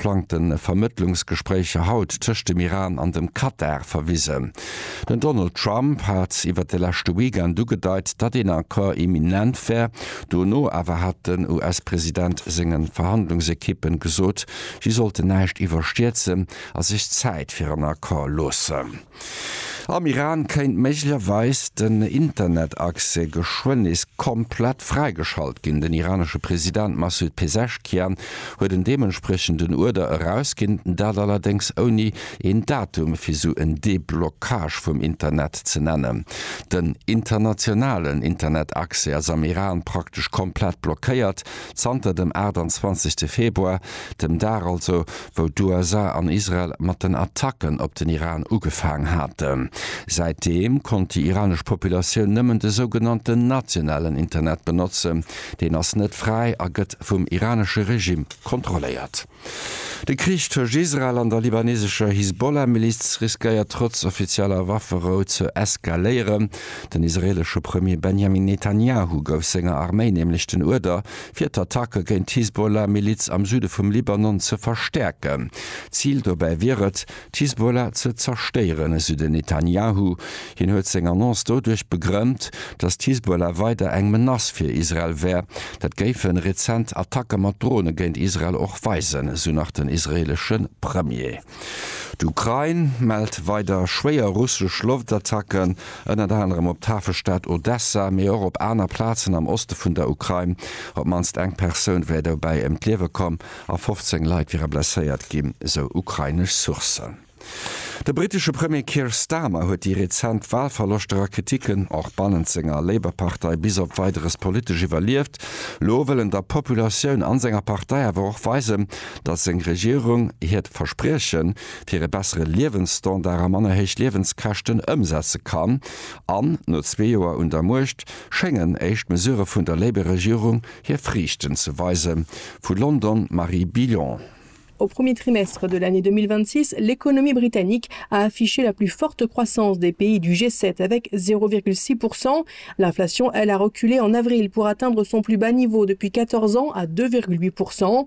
plangte Vermëttlungsgespréicher haut tëscht dem Iran an dem Katar verwisen. Den Donald Trump hat iwwer de leschte Weekend ugedeit, datt een Accord imminent wär. Dono awer hat den US-President senge Verhandlungsekippen gesot, si sollten näischt iwwerstierzen a sech Zäit fir en Accord loossen. Am Iran kéint méiglecherweis den Internetaccès geschwënn nees komplett fräigeschalt ginn. Den iranesche President Massoud Pezeshkian huet en deementspriechenden Uerder erausginn, dat allerdéngs ouni een Datum fir esou en Deblockage vum Internet ze nennen. Den internationalen Internetaccès ass am Iran praktesch komplett blockéiert zanter dem 28 Februar, dem Dag also wou d'USA an Israel mat den Attacken op den Iran ugefaang haten. Säitdeem konnt déi iranesch Populatioun nëmmen de sougenannten nationalen Internet benotzen. Deen ass net fräi a gëtt vum iranesche Regime kontrolléiert. De Krich tëscht Israel an der libanesescher Hisbollah-Miliz riskéiert trotz offizieller Wafferou ze eskaléieren. Den israelesche Premier Benjamin Netanjahu gouf senger Arméi nämlech den Uerder, fir d'Attacke géint d'Hisbollah-Miliz am Süde vum Libanon ze verstäerken. Zil dobäi wier et, d'Hisbollah ze zerstéieren, esou den Netanjahu. Hien huet seng Annonce doduerch begrënnt, datt d'Hisbollah weider eng Menace fir Israel wär. Dat géife rezent Attacke mat Drone géint Israel och weisen, esou nach den israeelesche Premier. D'Ukrain mellt weider schwéier russesch Loftattacken, ënnert anerem op d'Hafestad Odessa, mee och op aner Plazen am Oste vun der Ukrain. Op d'mannst eng Persoun wär dobäi ëm d'Liewe komm a 15 Leit wiere blesséiert ginn, sou ukrainesch Sourcen. De brittesche Premier Keir Starmer huet déi rezent Walverloschter a Kriticken, och bannent senger Labour-Partei, bis op Weideres politesch iwwerlieft. Lo wëll en der Populatioun an senger Partei awer och weisen, datt seng Regierung hiert Versprieche fir e bessere Liewensstandard a manner héich Liewenskäschten ëmsetze kann an no zwee Joer un der Muecht schéngen éischt Mesurë vun der Labour-Regierung hir Friichten ze weise Vu London Marie Billon. Au premier trimestre de l'année 2026, l'économie britannique a affiché la plus forte croissance des pays du G7 avec 0,6 pourcent. L'inflation, elle, a reculé en avril pour atteindre son plus bas niveau depuis 14 ans à 2,8 pourcent.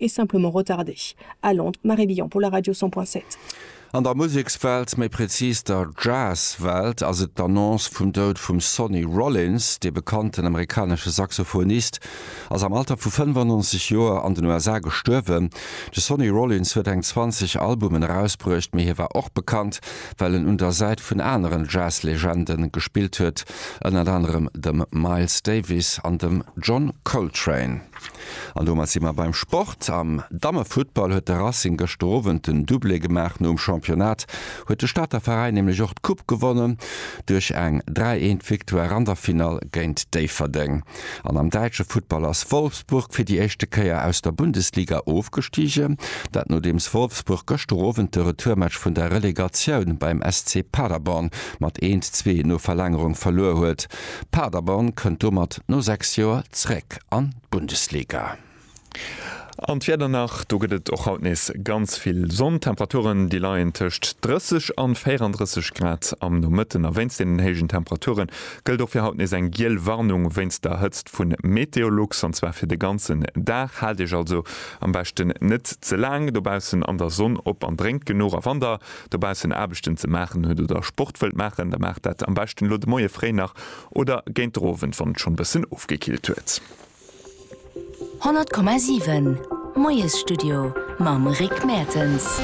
Est simplement retardé. À Londres, Marie Billon pour la radio 100.7. An der Musekswelt, méi prezis der Jazzwelt, ass et d'Annonce vum Doud vum Sonny Rollins. Dee bekannten amerikanesche Saxophonist ass am Alter vu 95 Joer an den USA gestuerwen. De Sonny Rollins huet eng 20 Albumen erausbruecht, mee hie war och bekannt, well en un der Säit vun aneren Jazzlegende gespillt huet, ënnert anerem dem Miles Davis an dem John Coltrane. An domat si mer beim Sport. Am Dammefuttball huet de Racing gëschter Owend den Doublé gemaach. Nom Championnat huet de Stater Veräin nämlech och d'Coupe gewonnen, duerch eng 3, 1 Victoire an der Finall géint Déifferdeng. An am däitsche Futtball ass Wolfsburg fir déi éischte Kéier aus der Bundesliga ofgestigen. Dat nodeems Wolfsburg gëschter Owend de Retourmatch vun der Relegatioun beim SC Paderborn mat 1, 2 no Verlängerung verluer huet. Paderborn kënnt domat no 6 Joer zréck an d'Bundesliga. An d'Wieder nach, do gëtt et och haut nees ganz vill Sonn. Temperaturen, déi leien tëscht 30 an 34 Grad am Nomëtten. A wéinst deenen héijen Temperature gëllt och fir haut nees eng giel Warnung wéinst der Hëtzt vu Meteolux, an zwar fir de ganzen Dag. Haalt iech also am beschten net ze laang dobaussen an der Sonn op an drénkt genuch. A wann der dobaussen Aarbechten ze maachen huet oder Sport wëllt maachen, da maacht dat am beschten elo de Moie fréi nach oder géint de Owend, wann et schonn e bëssen ofgekillt huet. 100,7, Moiesstudio mam Rick Mertens.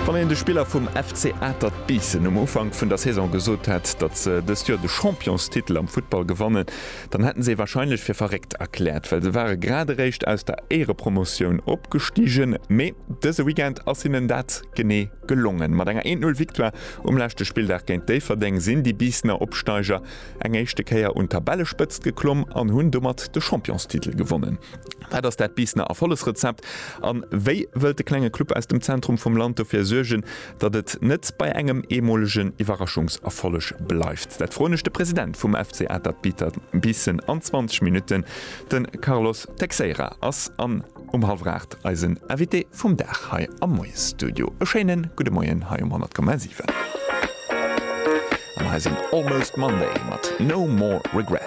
Wann een de Spiller vum FC Atert Biissen um Ufank vun der Saison gesot hätt, datt se dëst Joer de Championstitel am Futtball gewannen, Dann hätten se wahrscheinlech fir verréckt erklärt, well se ware grad eréischt aus der Éirepromotioun opgestigen. Mee dëse Weekend ass hinnen dat genee gelongen. Mat enger 1-0 Victoire um leschte Spilldag géint Déifferdeng sinn déi Biissener Opsteiger eng éischte Kéier un d'Tabellespëtzt geklomm an hunn domat de Championstitel gewonnen. Wat ass dat Biissener Erfollegsrezept an wéi wëllt de klenge Club aus dem Zentrum vum Land dofir suergen, Datt et net bei engem eemolegen Iwwerraschungserfolleg bleift, dat froen ech de President vum FC Atert Biissen an 20 Minutten. De Carlos Teixeira ass an um hallwer 8 eisen Invité vum Dag hei am Moiesstudio. E schéine gudde Moien hei um 100,7 an eisem Almost Monday mat No More Regret.